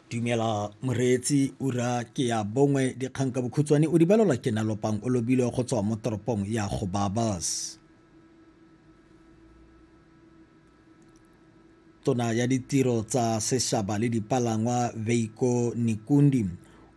dumela moreetsi ura ke ya bongwe dikgang ka bokhutshwane o di balelwa ke nalopang o lobile go tswa mo toropong ya go babas tona ya ditiro tsa seshaba le dipalangwa veiko nikundi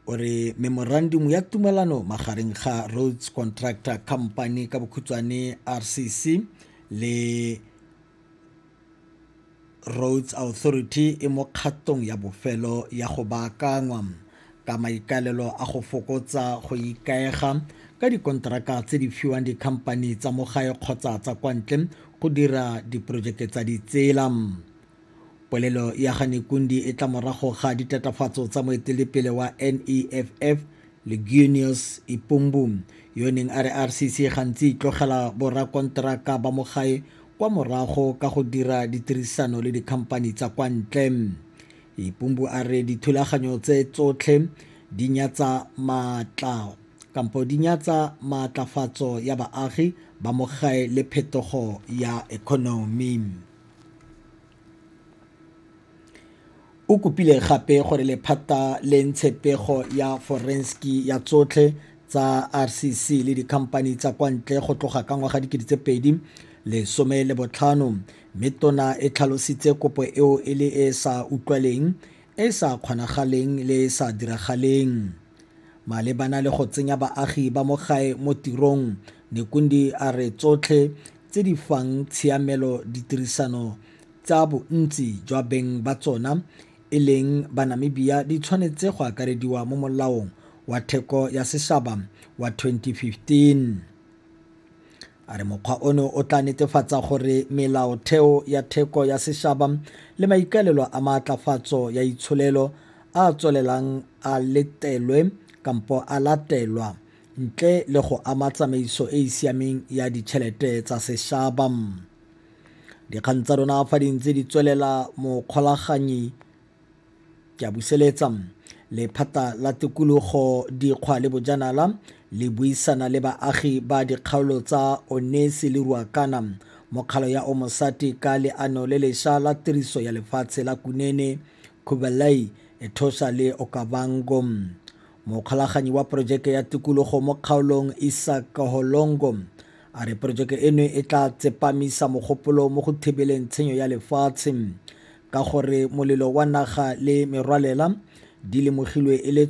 o re memorandum ya tumelano magareng ga roads contractor company ka bokhutshwane rcc le Roads Authority e mo kgatong ya bofelo ya go baakanngwa, ka maikaelelo a go fokotsa go ikaega ka dikonteraka tse di fiwang dikhampani tsa mo gae kgotsa tsa kwa ntle go dira diporojeke tsa ditsela. Polelo ya ga Nekundi e tla morago ga ditatofatso tsa moeteledipele wa NEFF Legunius Ipumbu yo neng a re RCC gantsi e itlogela borakonteraka ba mo gae kwa morago ka go dira ditirisano le dikhamphani tsa kwa ntle. Ipumbu a re dithulaganyo tse tsotlhe di nyatsa maatla kampo di nyatsa maatlafatso ya baagi ba mo gae le phetogo ya economy. O kopile gape gore lephata le ntshe pego ya forenski ya tsotlhe tsa RCC le dikhamphani tsa kwa ntle go tloga ka ngwaga 2015 mme tona e tlhalositse kopo eo e le e e sa utlwaleng, e e sa kgonagaleng le e e sa diragaleng. Malebana le go tsenya baagi ba mo gae mo tirong, Nekundi a re tsotlhe tse di fang tshiamelo ditirisano tsa bontsi jwa beng ba tsona e leng Banamibia di tshwanetse go akarediwa mo molaong wa theko ya seshaba wa 2015. A re mokgwa ono o tla netefatsa gore melaotheo ya theko ya sešaba le maikaelelo a maatlafatso ya itsholelo a a tswelelang a letelwe kampo a latelwa ntle le go ama tsamaiso e e siameng ya ditšhelete tsa sešaba. Dikgang tsa rona fa di ntse di tswelela mokgolaganyi Ke a buseletsa. Lephata la Tikologo, Dikgwa le Bojanala le buisana le baagi ba dikgaolo tsa Onesi le Ruakana mo kgalo ya Omosati ka leano le lesha la tiriso ya lefatshe la Kunene, Kubeley, Etosha le Okavango. Mokgolaganyi wa porojeke ya tikologo mo kgaolong Isaac Kaholongo a re porojeke eno e tla tsepamisa mogopolo mo go thibeleng tshenyo ya lefatshe Ka gore molelo wa naga le merwalela di lemogilwe e le